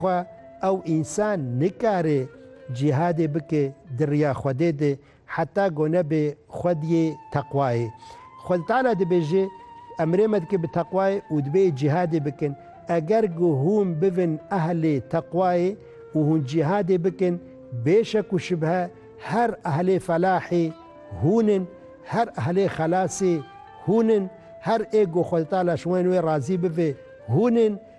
Xwe ew însan nikare cîhadê bike di riya Xwedê de heta ku nebe xwediyê teqwayê. Xwed Teala dibêje, Emrê me dike bi teqwayê û divê cîhadê bikin. Eger ku hûn bibin ehlê teqwayê û hûn cîhadê bikin, bê şek û şibhe her ehlê felahê hûn in, her ehlê xelasê hûn in, her ê ku Xwed Teala ji wan wê razî bibe hûn in.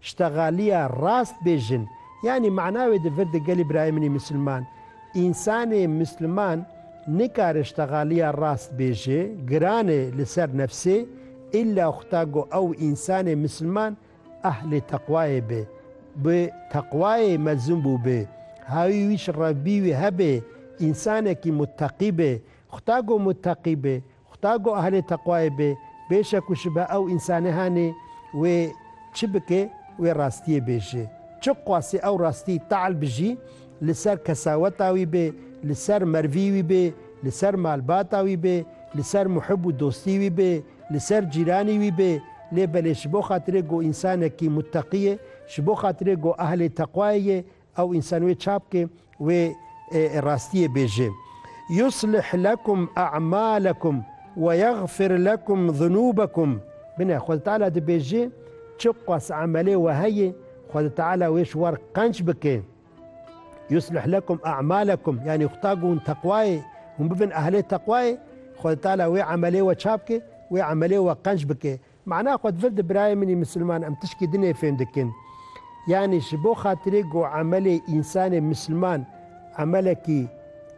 Ştegalîya rast bê jin, yanî mana wê di vir di gelî birayê min î misilman. Însanê misliman nikare ştegalîya rast bêje, giran e li ser nefsê, îlla xuta go ew însanê misilman ehlê teqwayê be. Bi teqwayê mezûn bû be. Hawî wî şirevbî wî hebe, însanekî muteqî be. Xuta go muteqî be Xuda ku ehlê teqwayê be, bêşek û şibe ew însanê hanê wê çi bike wê rastiyê bêje. Çi qasî ew rastî teal bijî, li ser kesaweta wî be, li ser mervî wî be, li ser malbata wî be, li ser muhib û dostî wî be, li ser cîranî wî be, lê belê ji bo xatirê ku însanekî mutteqî ye, ji bo xatirê ku ehlê teqwayê ye, Ew însan wê çap ke wê rastiyê bêje. Yuslih lekum e'malekum ve yexfir lekum zunubekum. Bine, Xweda Teala dibêje, çi qas emelê we heye, Xweda Teala wê ji war qenc bike. Yuslih lekum e'malekum, yanî Xweda ku hûn teqwayê, hûn bibin ehlê teqwayê, Xweda Teala wê emelê we çap ke, wê emelê we qenc bike. Mana xwe divir di birayê min ê misilman em tişkî din ê fêm dikin. Yanî ji bo xatirê ku emelê însanê misilman emelekî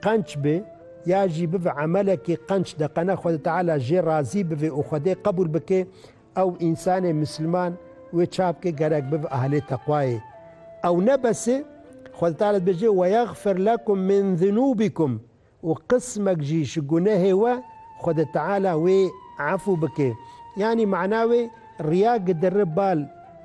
qenç be ya jî bibe emelekî qenç deqene Xwedê Teala jê razî bibe û Xwedê qebûl bike ew însanê misilman wê ça bike gerek bibe ehlê teqwayê. Ew ne bes e Xwedê Teala dibêje, Weyexfir lekum min zunûbikum Û qismek jî ji gunehê we Xwedê Teala wê efû bike. Yanî mana wê riya gidiri bal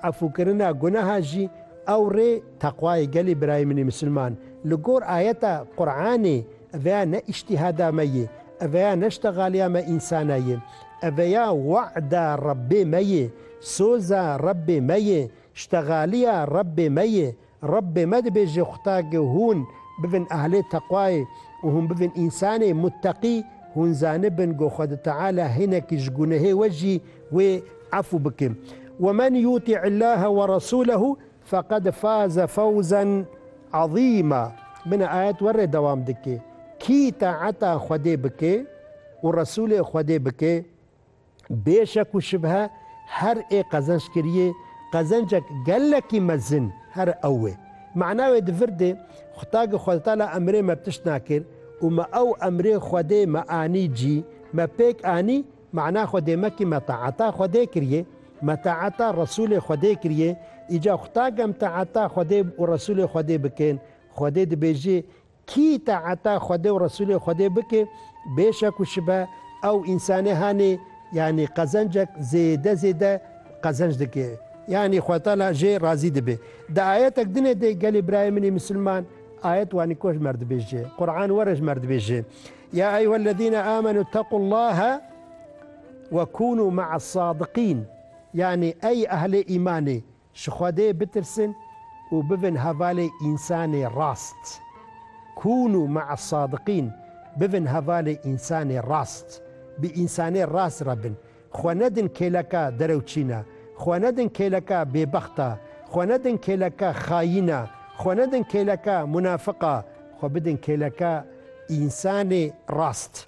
efûkirina guneha jî ew rê teqwayê gelê birayê min ê misilman. Li gor ayeta Quranê eveya ne îştîhada me yê, eveya ne ştegaliya me însana yê. Eveya wa'da Rebbê me yê, soza Rebbê me yê, ştegaliya Rebbê me yê. Rabbê me dibêje Xwtake hûn bibin ehlê teqwayê û hûn bibin însanê mutteqî, hûn zanibin go Xwedi Teala hinekî ji gunehê we jî wê efû bike. Wemen yutî Illahe we resûlehu feqed faze fewzen ezîma. Min a ayet we rê dewam dike. Kî taeta Xwedê bike û Resûlê Xwedê bike, Bê şek û şibhe her ê qezenc kiriyê qezencek gelekî mezin here ew e. Mana wê di vir de Xwetagê Xwedetala emrê me bi tişt nakir û me ew emrê Xwedê me anî cî, me pêk anî, mana Xwedê me kî me taeta Xwedê kiriyê, me taeta Resûlê Xwedê kiriyê, îca Xwetag em taeta Xwedê û Resûlê Xwedê bikin, Xwedê dibêjî Kî taeta Xwedê û Resûlê Xwedê bike, bêşa ku şibe ew însanê hanê, yanî qezencek zêde zêde qezenc dike, yanî Xwedetala jê razî dibe. Di ayetek din e de gelê birayê min ê misilman, ayet wanî ku ji mer dibêje, Quran were ji mer dibêje, Ya eyyuhellezîne âmenû ittaqullâhe wekunû me'as sâdiqîn, yanî ey ehlê îmanê, Ji Xwedê bitirsin û bibin hevalê însanê rast. Kûnû ma'a sadiqîn, bibin hevalê însanê rast. Bi însanê rast re bin. Xwe nedin kêleka derewçîna. Xwe nedin kêleka bêbexta. Xwe nedin kêleka xayîna. Xwe nedin kêleka munafiqa. Xwe bidin kêleka însanê rast.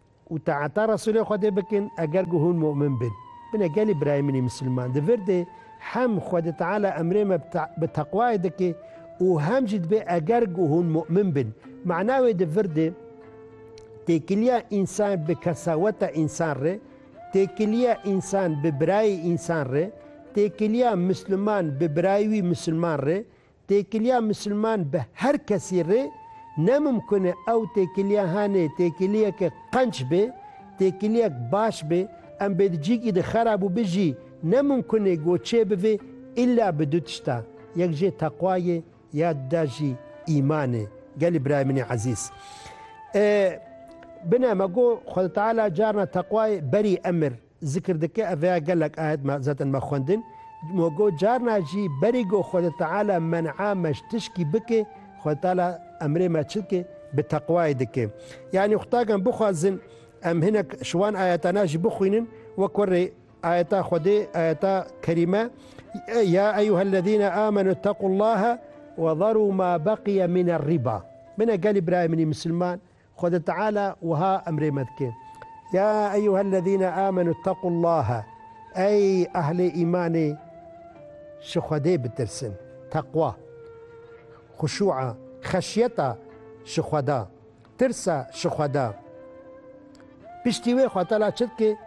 Û taeta Resûlê Xwedê bikin eger ku hûn mu'min bin. Bine gelê birayê min ê misilman, di vir de hem Xwedê Teala emrê me bi teqwayê dike û hem jî dibe eger ku hûn mu'min bin. Mana wê di vir de têkiliya însan bi kesaweta însan re, têkiliya însan bi birayê însan re, têkiliya misliman bi birayê wî misilman re, Têkiliya misilman bi her kesî rê ne mimkun e, ew têkiliya hanê têkiliyeke qenç bê, têkiliyek baş bê, em bê di cîkî de xerab û bi jî ne mimkun ê go çê bivê îlla bi du tişta, yek jê teqwa yê ya dida jî îman ê. Gelî birayê min ê ezîz. E bine me go Xweda Teala carna teqwayê berî emir. Zikr dike ev rêya gelek ayet me zetin me xwendin mo go carna jî berî go Xwedê Teala men'a me ji tişkî bike Xwedê Teala emrê me çi dike bi teqwayê dike yanî xutagan bixwazin em hinek ji wan ayetana jî bixwînin wek we rê ayeta Xwedê ayeta kerîme ya eyyuhellezîne amenu ittaqullaha wezerû ma beqiye mîne rîba Min e gelî birayê min î misilman Xwedê Teala wiha emrê me dike, Ya eyyuhellezîne âmenû ittaqullâhe, Ey ehlê îmanê ji Xwedê bitirsin, teqwa, xuşû'a, xeşyeta ji Xweda, tirsa ji Xweda. Piştî wê Xwedê Teala çi dike?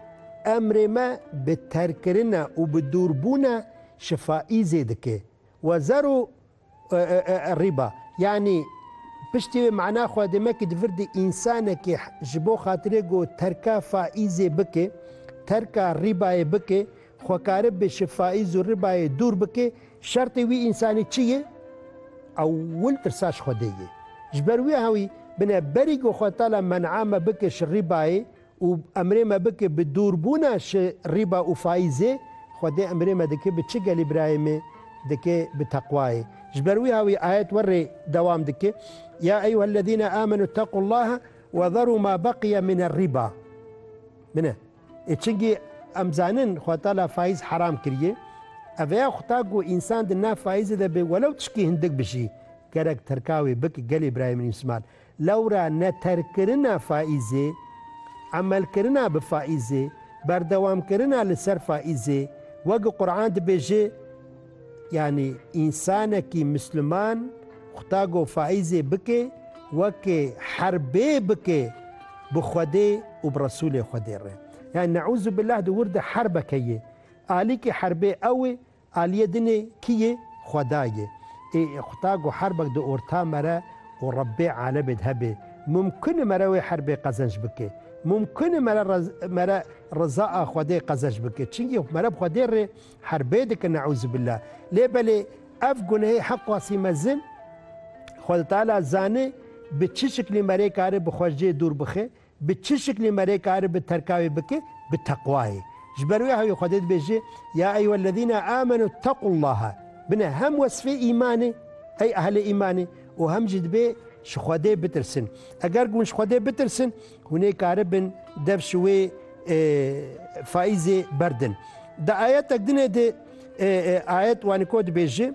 Emrê me bi terkkirina û bi dûrbûna ji faîzê dike. Wezerû Rîba, yanî piştî wê mana xwe dê me ku di vir de însanekî ji bo xatirê ku terka faîzê bike, terka rîbayê bike, xwekarib be ji faîz û rîbayê dûr bike, şertê wî însanî çi ye? Ewil tirsa ji Xwedê ye. Ji ber wê hewî bine berî ku Xwetala men'a me bike ji rîbayê Û emrê me bike bi dûrbûna şi rîba û faîzê, Xwedê emrê me dike bi çi gelî birayemê dike bi teqwayê. Ji ber wî ha wî ayet we rê dewam dike, Ya eyyuhellezîne âmenû ittaqullâhe we zerû mâ beqiye minerrîbâ. Bine. Ê çingî em zanin Xweda Teala faîz heram kiriye. Eveya xuta ku însan di nav faîzê de bê welew tişkî hindik bijî, gerek terka wê bike gelê birayemê Mîsman. Lewra neterkkirina faîzê, emelkirina bi faîzê, berdewamkirina li ser faîzê, wek Quran dibêje, Yanî însanekî misliman xuta go faîzê bike weke herbê bike bi Xwedê û bi Resûlê Xwedê re. Yanî neûzubillah di wir de herbeke ye. Alîkî herbê ew e Aliyê dinê kî yê? Xweda yê. Ê quta go herbek di orta me re û Rebbê alemê de hebê, mumkun e mere wê herbê qezenc bike. Mumkun e mere mere riza a Xwedê qezenc bike. Çinkî mere bi Xwedê re herbê dike neûzubîllah. Lê belê ev gunehê heqasî mezin Xweda Teala zane bi çi şiklî mere kare bi Xwedê dûr bixe. Bi çi şiklî me rê kar bi terka wê bike? Bi teqwayê. Ji ber wê hewî Xwedê dibêje, Ya eyyuhellezîne âmenû ittaqullâhe. Bine hem wesfê îmanê, ey ehlê îmanê û hem jî dibê ji Xwedê bitirsin. Eger ku hûn ji Xwedê bitirsin, hûn ê karibin dev ji wê faîzê berdin. Di ayetek dinê de ayet waniko dibêje,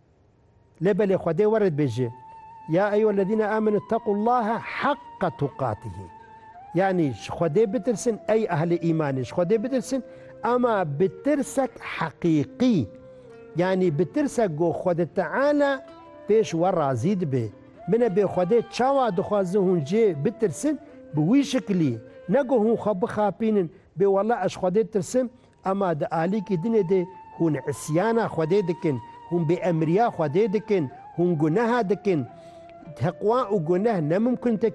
Lê belê Xwedê were dibêje, Ya eyyuhellezîne âmenû ittaqullâhe haqqa tuqatihî, yanî ji Xwedê bitirsin, ey ehlê îmanê ji Xwedê bitirsin, ema bi tirsek heqîqî, yanî bi tirsek ku Xwedê Teala pêş we razî dibe. Min e bê Xwedê çawa dixwazin hûn jê bitirsin bi wî şiklî, ne ku hûn xwe bixapînin bê wela ez ji Xwedê ditirsim, Ema di alîkî dinê de hûn îsyana Xwedê dikin, hûn bêemriya Xwedê dikin, hûn guneha dikin. Teqwa û guneh nemimkun tê